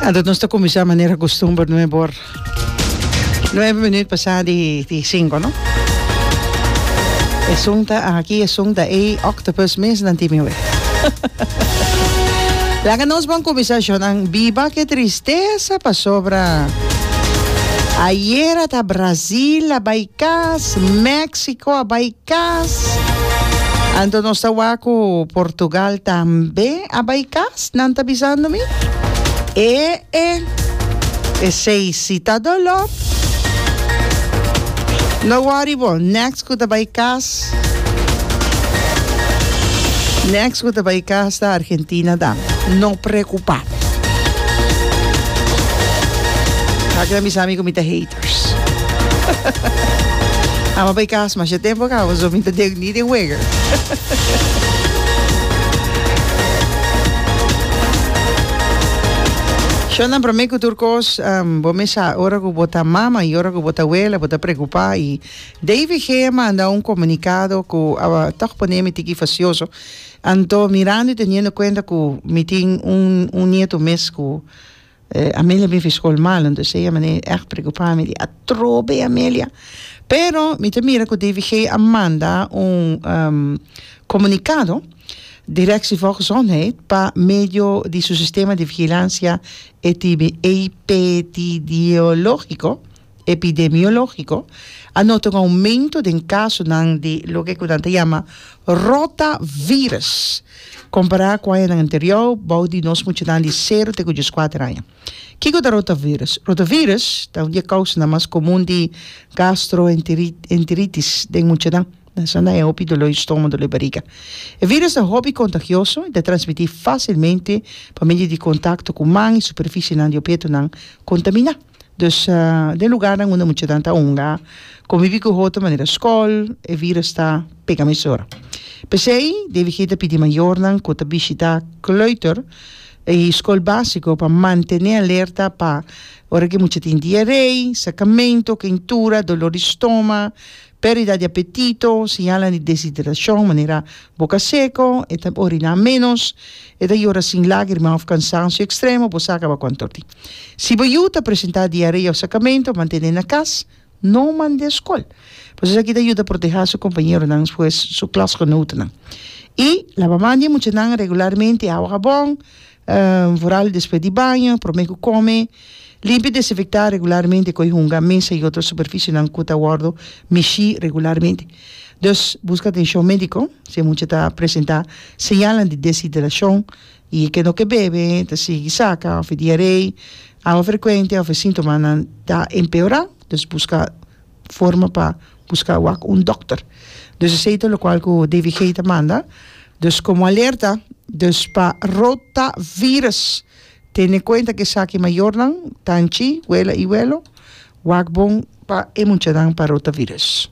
Anto nos ta kuminsá manera kustumber nuhe por nueve minuut pasá di di sinku no. Esun ta aki, esun ta ei, octopus mesnan tin mi we. Laga nos bon kuminsá shownan biba ke tristesa pasobra ayera ta Brazil a bai kas, Mexico a bai Cas. Anto nos ta wak cu Portugal tambe a bay cas? Nan ta bisando mi? E e. Esey si ta dolor. No worry bo, next cu ta bay cas, next cu ta bay cas ta Argentina dan. No preocupa. Aki nan bisa mi cu mi ta hater. Amo bay kas masha tempo kaba so mi ta dek ni den wega. Shonda prome ku tur kos um, bo me sa ora ku bo ta mama i ora ku bo ta wela bo ta preocupa i DVG a manda un comunicado ku a toch pone mi tiki facioso anto mirando i teniendo cuenta ku mi tin un un nieto mes ku Amelia bin fi skol malo, entonces ey a manera di echt preocupa mi di atrobe Amelia, pero mi ta mira cu DVG a manda un comunicado direct si for gezondheid pa medio di su sistema di vigilancia epidemiologico. epidemiológiko a nota un oumento den kasonan di loke ku nan ta yama rotavirus kompará ku añanan anterió bou di nos muchanan di sero te ku dies kuater aña. Kiko ta rotavirus? Rotavirus ta un di e kousanan mas komun di gastroenteritis den muchanan, nan a sanda e hopi doló i stómago, doló i bariga. E virus ta hopi kontagioso i ta transmití fásilmente pa medio di kontakto ku man i superfisienan di obietonan kontaminá. Dus den lugarnan unda muchanan ta hunga komibi ku hotu manera skòl, e virus ta pega mesora. P'esei DVG ta pidi mayornan ku ta bishitá kleuter i skol básiko pa mantené alerta pa ora ku e mucha tin diarei, sakamentu, kentura, dolor di stoma, Perdida di apetito, señalnan di deshidracion, manera boca seco, e ta orina menos, e ta yora sin lagrima of cansancio extremo, bo sa caba cu antorti. Si bo yu ta presenta diarea of sacamento, mantene na cas, no mande escol. Pues esaki ta yuda proteha su compañeronan pues su klasgenotennan. Y laba man di e muchanan regularmente awa habon, Vooral despues di baño, prome cu come, limpia y desinfecta regularmente cu e hunga, mesa y otro superficionan cu ta wordo mishi regularmente. Dus busca atencion medico si e mucha ta presenta señalnan di deshidracion y e kendo ke bebe, ta sigui saca of e diaree, awa frecuente of e sintomanan ta empeora, dus busca. forma pa buska wak un dokter dus esei ta lokual ku David Gay ta manda dus komo alerta dus pa rotavirus tene en kuenta ku esaki mayornan tanchi wela i welo wak bon pa e muchanan pa rotavirus.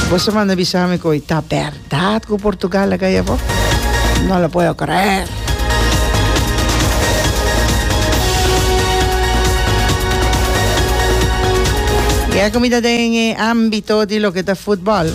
Bo sa manda bisa mi ku ta ber. Dat cu Portugal a gaya bo? No lo puedo creer. Ya que mi ta den e ámbito di lo que ta fútbol,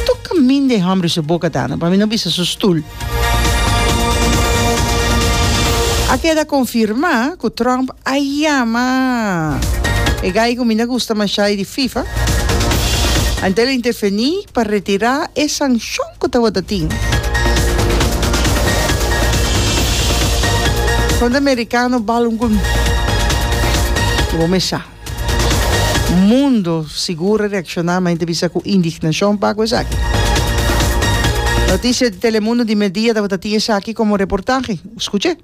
tur camin den e hombre su boca ta no, pa mi no bisa su stoel. A keda confirmá cu Trump Aja ma e gay cu mi na gusta masha e di fifa. Antel a interfeni pa retira e sancion cu tabata tin. Conta Americano bal un gol. Cu bo mesa. Mundo sigur a reacciona ma ente bisa cu indignacion pa cu esaki. Noticia di Telemundo di media tabata tin esaki como reportahe. Scuche.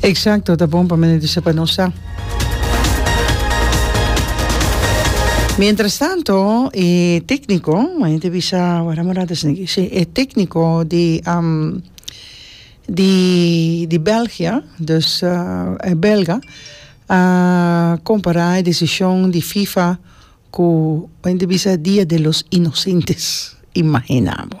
Exacto ta bon pa mende di sa pa nos sa. Mientras tanto e tecnico maña ta bisa wara morada esaki si e tecnico di di di Belgia dus e belga a compara e decision di fifa cu maña ta bisa dia de los inocentes imagina bo.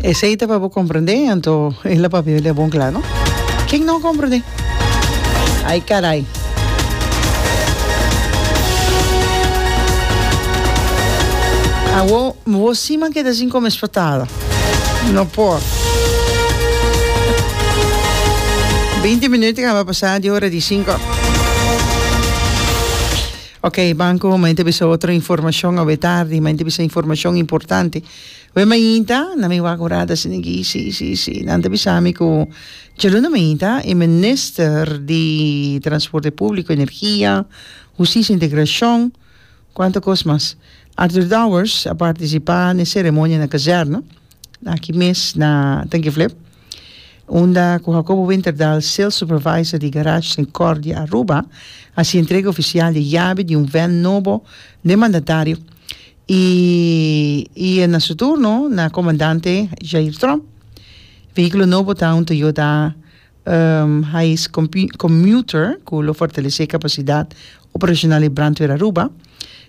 Esei ta pa bo comprende anto e la papia bia bon cla no ken no comprende ay caray. Awo bo sima keda sin come espatada no por. Binti minut a caba pasa di ora di cinco. Ok Banco ma inta bisa otro informacion awe tardi ma inta bisa informacion importante we mainta na mi wak un rat a sinigi si si si nan ta bisami cu djaluna mainta e minister di transporte publico energia husticia e integracion cu anto cos mas Arthur Dowers a participa n'e ceremonia na kazerna Aki mes na Tenkenflip, unda cu Jacobo Winterdal, Sales Supervisor di Garage Sincordia Aruba, haci entrega oficial di yabi di un ven nobo den mandatario y y e na su turno na Comandante Jair Tromp. Vehiculo nobo ta un Toyota Hais Commuter cu lo fortalece capacidad operacional di Brandweer Aruba.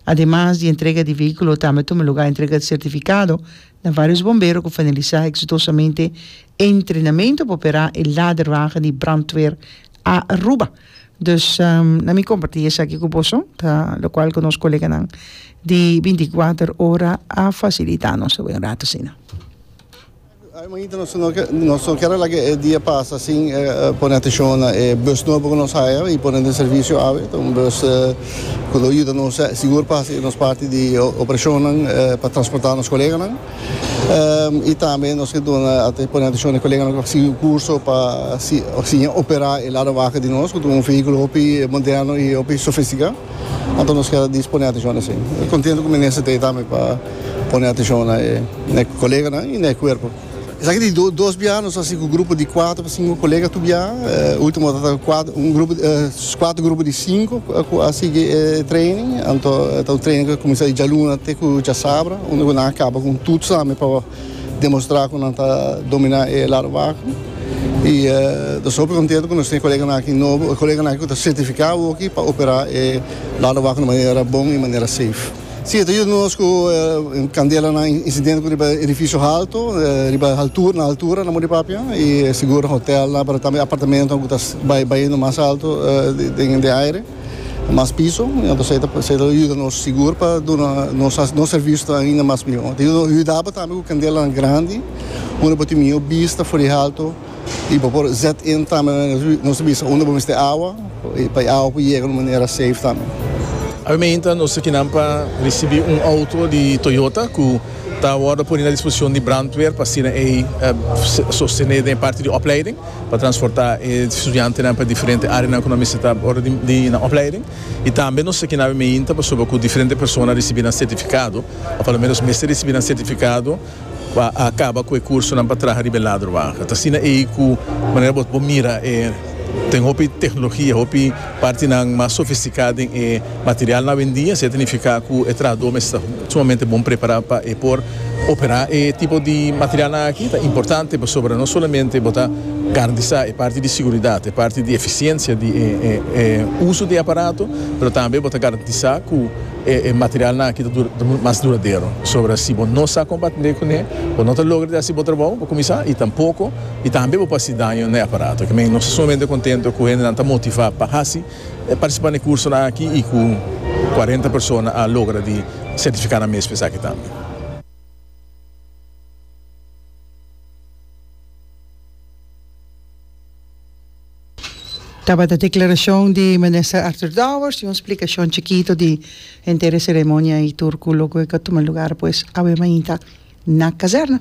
Ademas di entrega di vehiculo tambe tuma lugar entrega di certificado na varios bombero cu finalisa exitosamente e entrenamento pa opera e laderwagen di Brandweer Aruba. Dus na mi comparti esaki cu boso ta locual cu nos coleganan di binti y kuater ora a facilita nos e wen rato asina. Manita nos nos no kier a laga e dia pasa sin pone atencion na e bus nobo cu nos haya y pone den servicio awe. Ta un bus cu lo yuda nos sigur pa haci nos parti di operacionnan pa transporta nos coleganan. Y tambe nos ke duna pone atencion na e coleganan cu a sigui un curso pa siña opera e lado wagen di nos cu ta un vehiculo hopi moderno y hopi sofistica. Anto nos kier a dispone atencion na esey. Contento cu Minister ta ey tambe pa. pone atenshon na e koleganan i na e kuerpo. Esaki di dos biaha nos a hasi ku grupo di kuater pa sinku kolega tur biaha. E ultimo tabata un grupo di kuater grupo di sinku ku a sigui e training. Anto e ta un training ku a kuminsá di djaluna te ku djasabra unda ku nan a kaba ku un tuts tambe pa demostrá ku nan ta dominá e larbaku. I nos ta hopi kontento ku nos tin e koleganan aki nobo, koleganan aki ku ta sertifiká hoki pa operá e larbaku na manera bon i manera seif. Si, e ta yuda nos ku kandelanan i insidente ku riba edifisio halto, riba haltura, na haltura nan por di papia i sigur hotelnan pero tambe apartamentonan ku ta bai baiendo mas alto den den aire, mas piso, entonces esei ta yuda nos sigur pa duna nos sa nos servisio ta ainda mas mihó. Ta yuda nos, yuda bo tambe ku kandelanan grandi unda bo tin mihó bista for di halto. Y bo por zet in tambe na nos bisa unda bo mester awa, pa e awa por yega na un manera safe tambe. Awiamenta nos ta kinan pa ricibi un auto di Toyota cu ta wordo poni na disposicion di brandweer pa asina ey sostene den e parti di opleiding pa transporta e studiantenan pa e diferente areanan cu nan mester ta ora di na opleiding. Y tambe nos ta kinan awiamenta pasobra cu diferente persona ricibi nan certificado, o pa lo menos mester ricibi nan certificado. Bo a kaba ku e kursonan pa traha riba e ladrowagen. Ta asina ei ku manera bo bo mira e ten hopi teknologia, hopi partinan mas sofistikado den e material awendia. Esei ta nifiká ku e trahadó mester ta sumamente bon prepará pa e por operá e tipo di materialnan aki. Ta importante pasobra no solamente bo ta garantisá e parti di seguridat, e parti di efisiensia di e uso di e aparato, pero tambe bo ta garantisá ku. E materialnan aki ta munt mas duradero. Sobra si bo no sa kompa atendé kuné, bo no ta logra di hasi bo trabou pa kuminsá i tampoko i tambe bo pa hasi daño na e aparato. Kimin nos ta sumamente kontento ku hendenan ta motivá pa hasi e partisipá na e kursonan aki i ku kuarenta persona a logra di sertifiká nan mes pa esaki tambe. Tabata declaracion di Minister Arthur Dowers y un splicacion chikito di henter e ceremonia y tur cu loco e ca tuma lugar pues awe mainta na Caserna.